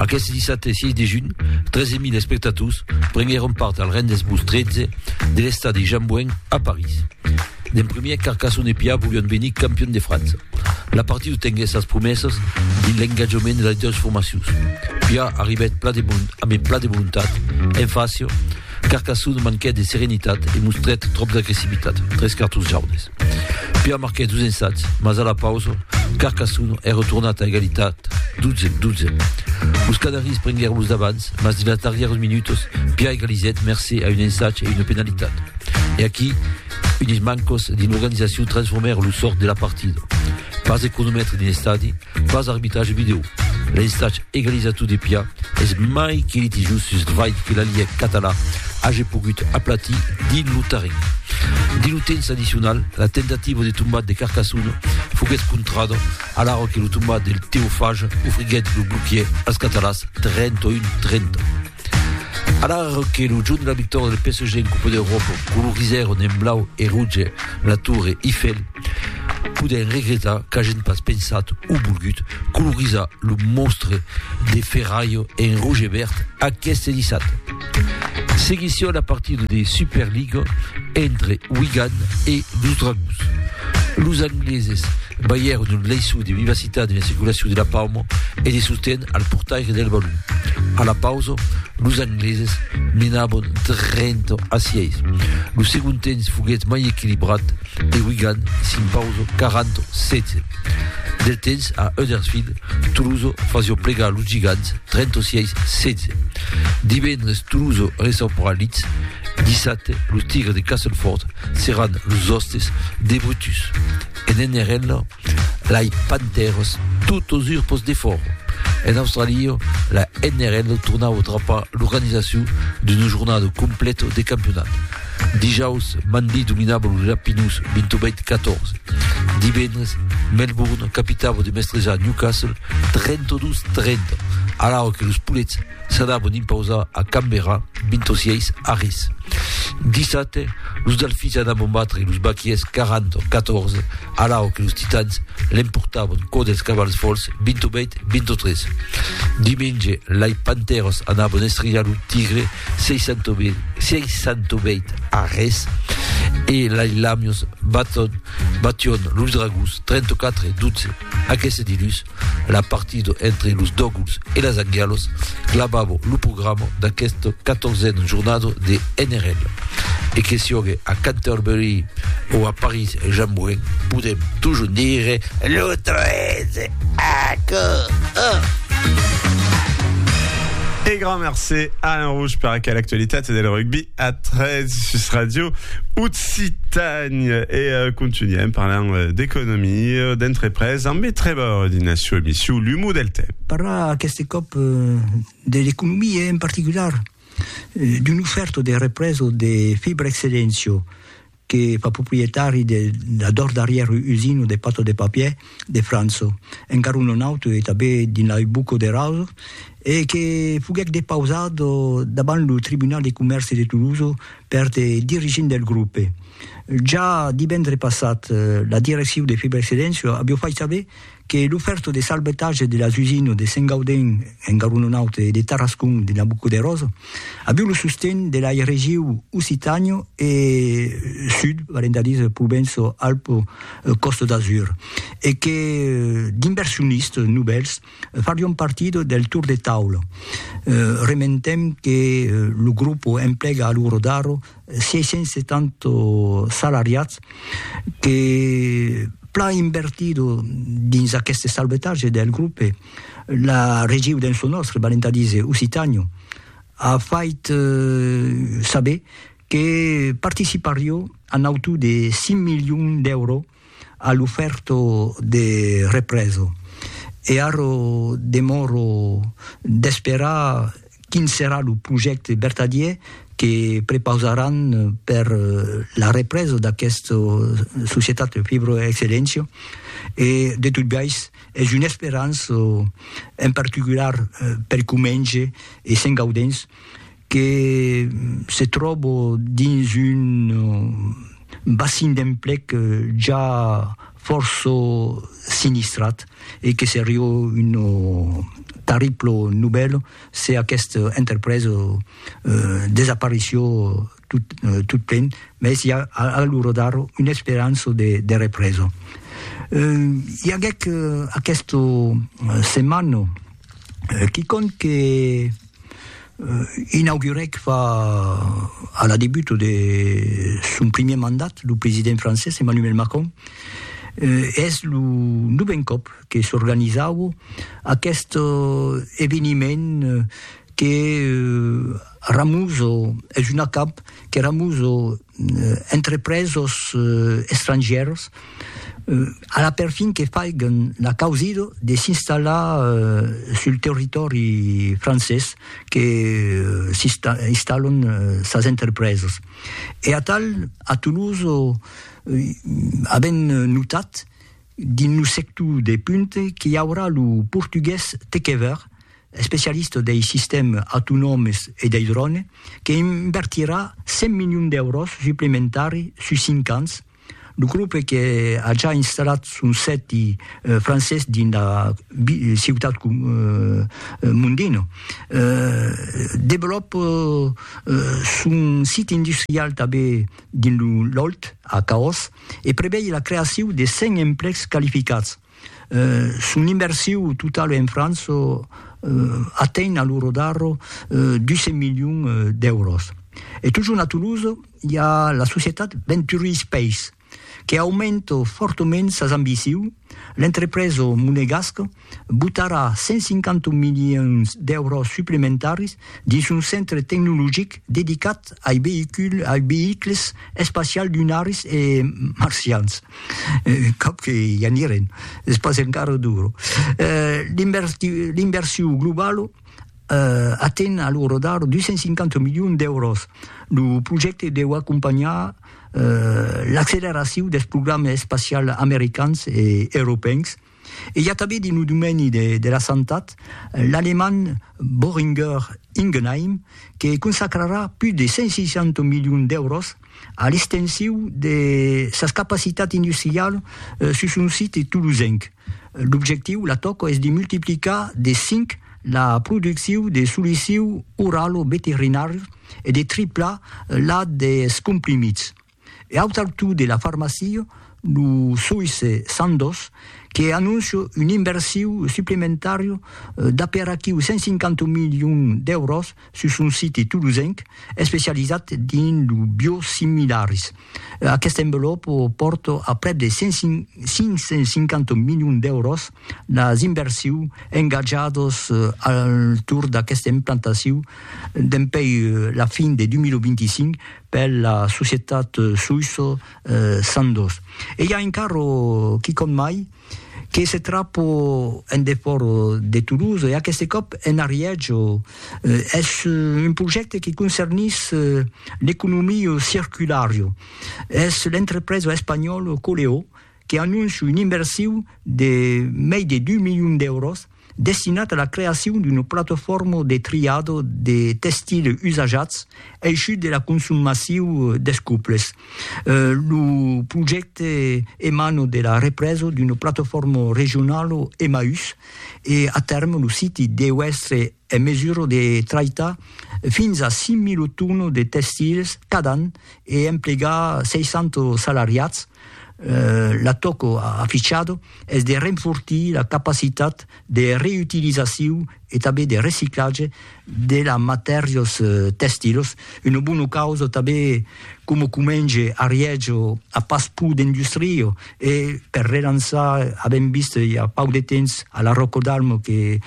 Aqueste dissabte 6 de junh, 13.000 espectators prenguèron part al Rendez-Vous 13 de l'estadi Jean Bouin a París. D'en premier, Carcassonne e Pià volián venir campion de França. La partida tenguèt sas promessas dins l'engatjament de las doas formacions. Pià arribèt pla de bon, ambe pla de volontat, en fàcia, Carcassonne manquèt de serenitat e mostrèt tròp d'agressivitat, tres cartons jaunes. Pia marquèt dos ensats, mas a la pausa, Carcassonne es retornat a egalitat 12, 12. Los Canaris prenguèron los davants, mas dins las darrièras minutas, Pia egalizèt mercé a un ensat e una penalitat. E aquí, unes mancas dins l'organizacion transformèron lo sòrt de la partida. Pas de cronomètre dins l'estadi, pas d'arbitratge vidèo. L'estatge egalizator de Pià es mai que litigiós sus el fait que la Liga català age pogut aplatir dins lo terren. Dins lo temps addicional, la tentativa de tombat de Carcassonne foguèt contrada alara que lo tombat del Teofage ofriguèt lo bloquièr als catalans 31-30. Alara que lo jorn de la victòria del PSG en Copa d'Europa colorizèron en blau e roge la Torre Eiffel, Podèm regretar qu'agen pas pensat o volgut colorizar lo monstre de ferralh en roge e verd aqueste dissabte. Seguission la partida de Superliga entre Wigan e los Dragons. Los angleses balhèron un leiçon de vivacitat en la circulacion de la pauma e de sosten al portaire del balon. A la pausa, los angleses menavan 30 a 6. Lo segond temps foguèt mai equilibrat, de Wigan, s'impauso 40, 16. Del temps a Huddersfield, Toulouse fasio plegar los gigants 36, 16. Divendres Toulouse recebrà Leeds, 17. Los Tigres de Castleford seran los hostes de Brutus. En NRL, lai Panthers tot os urpos de fòro. En Australia, la NRL tornau trapar l'organizacion d'una jornada completa de campionat. Dijaus, Manly dominava los Rapinus 28-14. Divendres, Melbourne capitava de mestrejar Newcastle 32-30, alara que los Poulets s'anavan impausar a Canberra 26 a res. Dissabte, los Delfins anavan batre los Baquiers 40-14, alara que los Titans l'emportavan quò dels Cavals Fols 28-23. Dimenge, lai Panthers anavan estrijar lo Tigre 668 arrés e lai lamios baton, bation los dragons 34 12 aqueste dilus la partida entre los doguls e las angialos clavavo lo programa d'aquesta 14 jornada de NRL e que siogue a Canterbury o a Paris Jean Moulin podem toujours dire le 13 Aquò! Oh! E grand mercé Alain Rouge per aquel actualitat e del rugby a 3 sus Radio Occitània. E uh, continuem parlant euh, d'economia, d'entrepresa, amb e trebor dina sua emissió L'Humo del Temps. Parlar aquest cop euh, de l'economia en particular, euh, d'un oferto de represo de Fibra Excellencio, que fa proprietari de la dors darrièr usina de pato de papier de França, encara un non auto e tanben dins la rue Bucco de Raso, e que foguèc depausat davant lo tribunal de comèrci de Toulouse per de dirigents del grupe. Ja divendre passat, la direccion de Fibrexcedensio aviá fait saber que lo fèrto de salvetatge de las usines de Saint-Gaudens en Garonenaut e de Tarascon de Nabucoderós aviu lo sosten de lai regiu Occitània e Sud, valent a dire Provenço-Alpes-Costa d'Azur, e que d'inversionistes novèls farion partida del tour de taula. Rementem que lo grupo emplega a lo rodar 670 salariats que plan invertido dins aqueste salvetatge del grupe, la regiu dens lo nòstre, valent a díser Occitània, a fait saber que participarió a nautu de 5 milions d'èuros A lo fèrto de reprèso. E arro demòro d'esperar quin serà lo projècte vertadier que prepausaràn per la reprèso d'aquesta societat Fibroexcellentia e de tot biais es una esperança en particular per Comenge e Sent Gaudens que se tròbo dins un bassin d'emplec ja fòrça sinistrat e que serió un tarriplo novèl se aquesta enterpresa desaparició tot plen, mès i a a l'ora d'ara una esperança de represa. I aguèc aquesta setmana quicòm que Inaugurèc fa a la debut de son primièr mandat lo president francés Emmanuel Macron e es lo novèn còp que s'organizaue aqueste eveniment que ramuso es un acamp que ramuso entrepresos estrangièrs a la perfin que faiguen la causida de s'installar sul territòri francés que s'installan sas entrepresas. E atal a Toulouse avèm notat dins lo sector de punta qu'i aurà lo portugués tec ever, especialista dei sistèmes autonòmes e dei drònes, que invertirà 100 milions d'èuros suplementari sus cinc ans, lo grope que a ja installat son sèti francés dins la ciutat Mondino, develòpa son sit industrial tanben dins lo Lòlt, a Caós, e prevei la creacion de 100 emplecs qualificats. Son inversiu totau en França atenh a lo rodarro 200 milions d'èuros. E totjorn a Toulouse i a la societat Venturi Space que aumenta fòrtament sas ambiciu, l'entrepresa monegasca botarà 150 milions d'èuros suplementaris dins son centre tecnologic dedicat ai veïculs espacials lunaris e marcians. Cap que i anirem, es pas encara duro. L'inversion globala aten a lo rodar 250 milions d'èuros. Lo projècte deu acompanhar l'acceleracion dels programas espacials americans e europèus, E i a tanben dins lo domeni de la santat l'alemand Boehringer Ingelheim que consacrarà pus de 160 milions d'èuros a l'extensiu de sas capacitats industrialas sus son site tolosenc. L'objectiu, la tòca, es de multiplicar de cinc la produccion de solicius oralo-veterinàrius e de triplar la dels comprimits. E au taltú de la farmacia, lo soïsse Sandoz que anóncia un inversiu suplementària d'aperaquiu 150 milions d'èuros sus son site tolosenc especializat dins lo biosimilaris. Aquesta envelòpa pòrta a prèp de 550 milions d'èuros las inversius engatjadas al torn d'aquesta implantacion dempèi la fin de 2025 per la societat soïssa Sandoz. E i a encara quicòm mai que se trapa en defòra de Toulouse, e aqueste còp en Ariège. Es un projècte que concernís l'economia circulara. Es l'entrepresa espanhòla Coleó que anóncia una inversiu de mei de dus milions d'èuros destinat a la creacion d'una platofòrma de triado de testile usajats eishut de la consum massiu des cuples. Lo projècte emana de la represa d'una platofòrma regionala Emmaüs e a tèrme lo siti deu èstre en mesura de traitar fins a 5.000 tònos de tèxtils cada an e emplegar 600 salariats, la tòca afichada es de renfortir la capacitat de reutilizacion e tanben de reciclatge de las matèrias tèxtilas, una bona causa tanben coma comenge ariètge a pas pro d'industria, E per relançar, avèm vist i a pauc de temps a la Rocco d'Almo que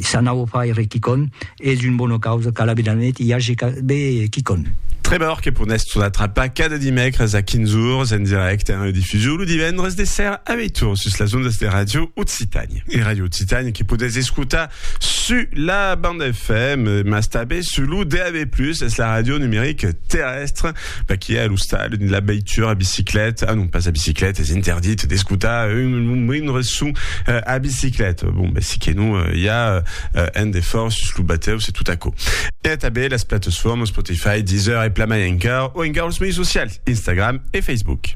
s'anava fai re quicòm, es un bona causa qu'a la Vilanet i age be quicòm. Trevor que ponèst son atrapar cada dimècres a 15 ors en dirècte en redifusion lo divendres de ser a 8 ors sus las ondas de Radio Occitània. E Radio Occitània que podètz escotar su la banda FM mas tanben su lo DAB+, es la ràdio numeric terrèstre Paquia a l'ostal dins la veitura a bicicleta, ah non pas a bicicleta, es interdit d'escutar un, un moindre son euh, a bicicleta. Bon, ben si que non, euh, i a euh, un defòrt sus lo batèu, se tot aquò. E tanben las plataformas Spotify, Deezer e plan mai encara, o encara los mei socials, Instagram e Facebook.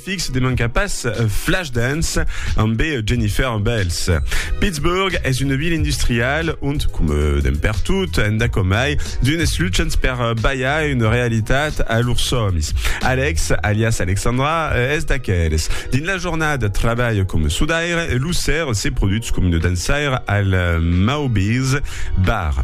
Fix de manca pas Flashdance ambé Jennifer Bells. Pittsburgh es una vila industrial ont, coma d'en pertot enda comai, d'unes luchants per balhar una realitat a lors sòmis. Alex, alias Alexandra, es d'aqueles. Dins la jornada trabalha coma sudaire e lo ser se produtz coma una dançaire al Mauby's Bar.